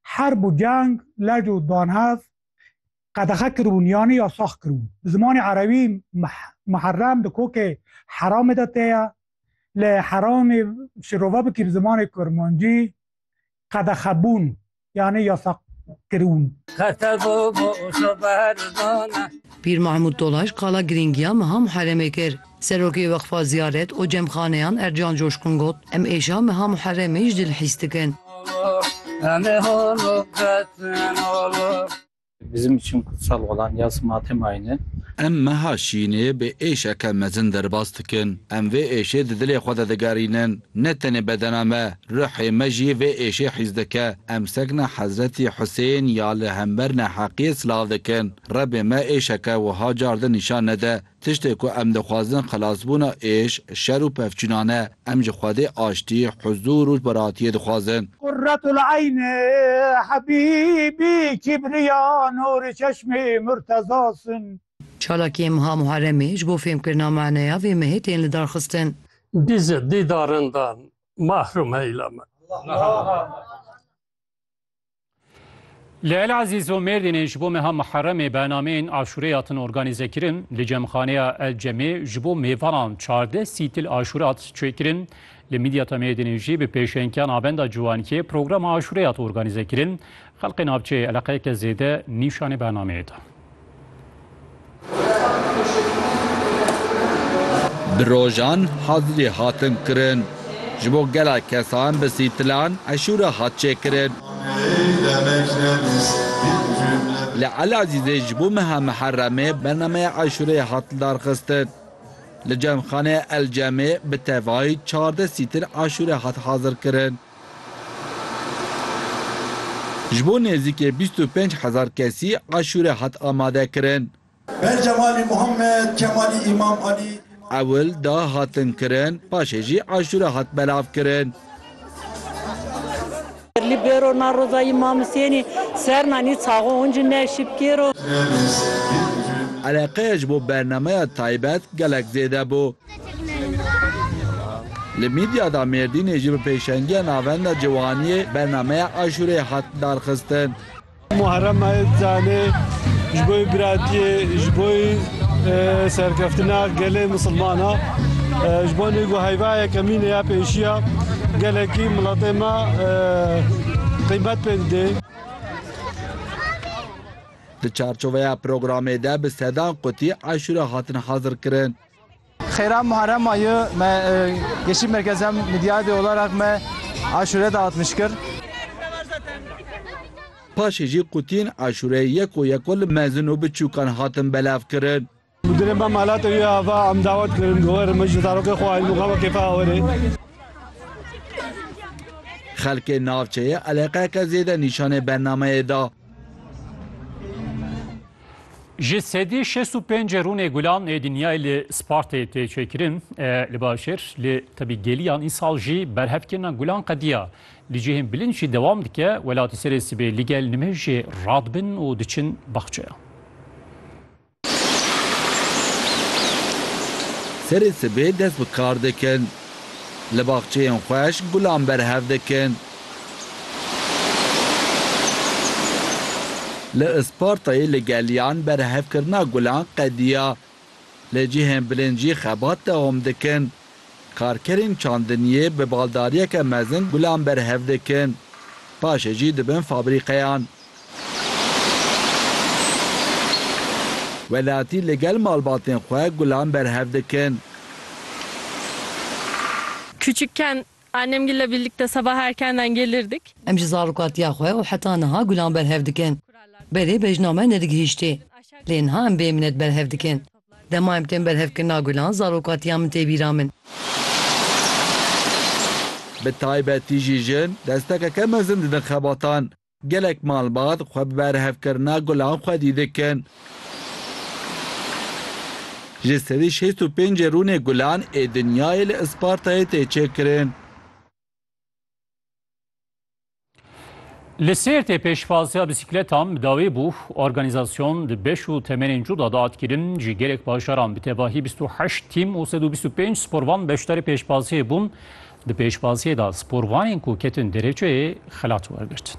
Herb û ceng, lec û danhev qedexe kiribûn yanî yasax kiribûn. Bi zimanê erebî Muherrem di kokê Heramê de tê ye. Lê Heramê şirove bikî bi zimanê kurmancî qedexebûn yanî yasax kiribûn. Pîr Mahmûd Dolaşt qala girîngiya meha Muherremê kir. Serokê Weqfa Ziyaret û Cemxaneyan Ercan Coşkun got, Em êşa meha Muheremê ji dil hîs dikin. Bizim için kutsal olan yaz matem ayını. Em meha şînê bi êşeke mezin derbas dikin. Em vê êşê di dilê xwe de digerînin. Ne tenê bedena me, ruhê me jî vê êşê hîs dike. Em sekna Hezretî Husên ya li hember neheqiyê silav dikin. Rebê me êşeke wiha car din nîşan nede Tiştê ku em dixwazin xilasbûna êş, şer û pevçûnan e. Em ji Xwedê aştî, huzûr û rojbaratiyê dixwazin. Qurratul Eyn Habîbî Kîbriya Nûrî Çeşmî Murteza Sun. Çalakiyên meha Muharremê ji bo fêmkirina maneya vê mehê tên lidarxistin. Bi ji dîdarindan mahrum heyla me. Li El Ezîz û Mêrdînê ji bo meha Muheremê bernameyên aşûreyê hatin organîzekirin. Li Cemxaneya El Cemê ji bo mêvanan çardeh sîtil aşûre hat çêkirin. Li Mîdyata Mêrdînê jî bi pêşengîya Navenda Ciwankê programa aşûreyê hat organîzekirin. Xelkê navçeyê eleqeyeke zêde nîşanê bernameyê da. Bi rojan hazirî hatin kirin. Ji bo gela kesan bi sîtilan eşûra hat çêkirin. Li Elazîzê ji bo meha Miheremê bernameya eşûreyê hat lidarxistin. Li Cemxaneya El Cemê bi tevayî çardeh sîtin eşûre hat hazirkirin. Ji bo nêzîkê bîst û pênc hezar kesî aşûre hat amadekirin. Ber Cemalî Muhammed, Kemalî Îmam Alî, Îmam. Ewil da hatin kirin, paşê jî aşûre hat belavkirin. Li bero na roza Îmam Husênî ser nanî çaxo hûn jî ne şipkêro. Eleqeya ji bo bernameya taybet gelek zêde bû. Li Midya da Mêrdînê jî bi pêşengiya Navenda Ciwaniyê bernameya aşûreyê hat darxistin. Muharrem Ayitcanê ji bo biratiyê, ji bo serkeftina gelê misilmana, ji bo nêk û heyva yekemînê ya pêşiya gelekî miletê me qîmet pê didê. Di çarçoveya programê de bi sedan qutî aşûre hatin hazirkirin. Xêra Muharrem ma yi me Yeşîl Merkezê Midyadê Olaraq me aşûre de hat mişkir. Paşê jî qutiyên aşûreyê yeko yeko li mezin û biçûkan hatin belavkirin. Mudirê me Malatê wî ava em dawet kirin ku were min ji zarokê xwe aîn muqama kêfa ew were. Xelkê navçeyê eleqeyeke zêde nîşanê bernameyê da. Ji sedî şêst û pêncê rûnê gulan ê dinyayê li Spartayê tê çêkirin li başêr li tebî geliyan îsal jî berhevkirina gulan qediya li cihên bilind jî dewam dike welatî serê sibê li gel nimêjê radibin û diçin baxçeya. Serê sibê dest bi kar dikin. Li baxçeyên xweş gulan berhev dikin. Li Ispartayê li geliyan berhevkirina gulan qediya. Li cihên bilind jî xebat dewam dikin. Karkerên çandiniyê bi baldariyeke mezin gulan berhev dikin. Paşê jî dibin fabrîqeyan. Welatî li gel malbatên xwe gulan berhev dikin. Küçükken Annemgille birlikte sabah erkenden gelirdik. Em ji zarokatiya xwe û heta niha gulan berhev dikin. Berê bejna me nedigihîştê. Lê niha em bê minet berhev dikin. Dema em tên berhevkirina gulan zarokatiya min tê bîra min. Bi taybetî jî jin destekeke mezin didin xebatan. Gelek malbat xwe bi berhevkirina gulan xwedî dikin. Ji sedî şêst û pêncê rûnê gulan ê dinyayê li Ispartayê tê çêkirin. Li Sêrtê pêşvaziya bisiklêtan bi dawî bû. Organîzasyon di beş û temenên cuda de hat kirin. Ji gelek bajaran bi tevahî bîst û heşt tîm û sed û bîst û pênc sporvan beşdarî pêşvaziyê bûn. Di pêşvaziyê de sporvanên ku ketin derêçeyê xelat wergirtin.